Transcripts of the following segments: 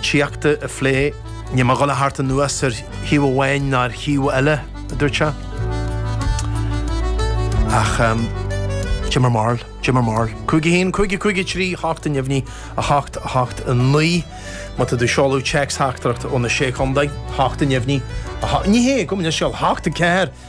tíochta a phlé. Níl mé dhul a theacht anuas ar thaobh amháin ná ar thaobh eile, a dúirt sé. Ach Jim or Marl, Jim or Marl. Cúig a haon, cúig a cúig a trí, a hocht a neamhní, a hocht, a hocht a naoi. Má tá tú seoladh téacs theachtaireacht ó na Sé Chontae, hocht a neamhní, a hocht, ní hé, gabh mo leithscéal, hocht a ceathair.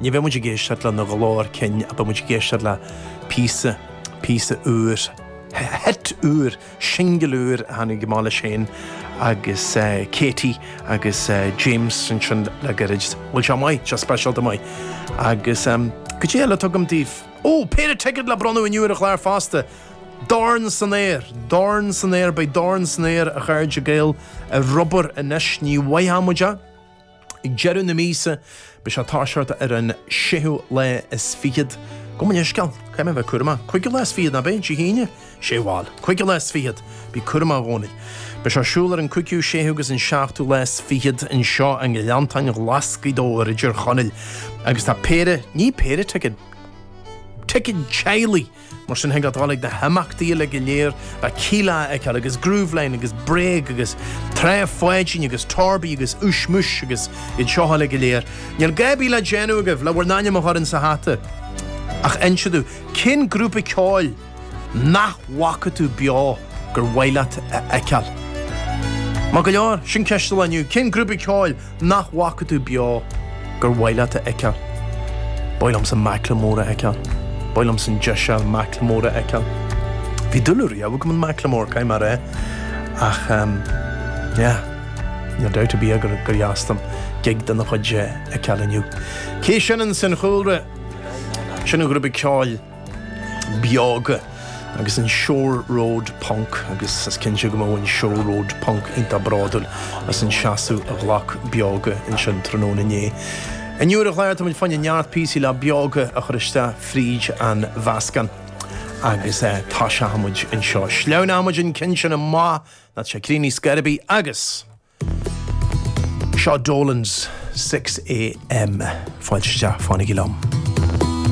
Ní bheidh muid ag éisteacht lena ghlór cinn ach beidh muid ag éisteacht le píosa, píosa úr, hit úr, singil úr a tháinig amach leis féin agus Katie agus James ansin le gairid. Bhuel seo maith, seo speisialta maith agus cad é eile atá agam daoibh? Ó! Péire ticead le bronnadh inniu ar an chlár fosta! Dorn san aer! Dorn san aer! Beidh dorn san aer a chairde Gael ar obair anois, ní bhfaighfeadh muid a. Ag deireadh na míosa, beidh sé ag toiseacht ar an séú lá is fichead. Gabh mo leithscéal, caithfidh mé bheith cúramach. Cúigiú lá is fichead, nach b'é? Dé hAoine? Sé bhal. Cúigiú lá is fichead. Bí cúramach i gcónaí. Beidh sé ar siúl ar an cúigiú, séú agus an seachtú lá is fichead anseo i nGleanntáin Ghlas Ghaoth Dobhair i dTír Chonaill agus tá péire, ní péire ticead, ticead teaghlaigh! Mar sin thig leat dul chuig na himeachtaí uile go léir le Kíla a fheiceáil agus Grooveline agus Bréag agus Trá Pháidín agus Torby agus Ushmush agus iad seo uile go léir. Níl a dhath ar bith le déanamh agaibh le bhur n-ainm a chur ins a' hata ach inse dúinn cén grúpa ceoil nach bhfaca tú beo gur mhaith leat a fheiceáil. Maith go leor, sin ceist an lae inniu, cén grúpa ceoil nach bhfaca tú beo gur mhaith leat a fheiceáil. Ba mhaith liomsa Macklemore a fheiceáil. Ba mhaith liomsa an deis a fháil Macklemore a fheiceáil. Bhí dúil riamh agam in Macklemore, caithfidh mé a rá, ach em, yeah, níl dabht ar bith gur dheas dom gig dena chuid a fheiceáil inniu. Cé sin ins an chúlra? Sin an grúpa ceoil. Beoga agus an Shore Road Punk agus is cinnte go mbeadh an Shore Road Punk iontach bródúil as an seasamh a ghlac Beoga ansin tráthnóna inné. Inniu ar an chlár tá muid fá choinne neart píosaí le Beoga a chur isteach fríd an mheascán agus toiseochaidh muid anseo. Sleamhnóidh muid an ceann sin amach nó tá sé ag críochnú ar scor ar bith agus seo Dolan's 6am fáilte isteach fanaigí liom.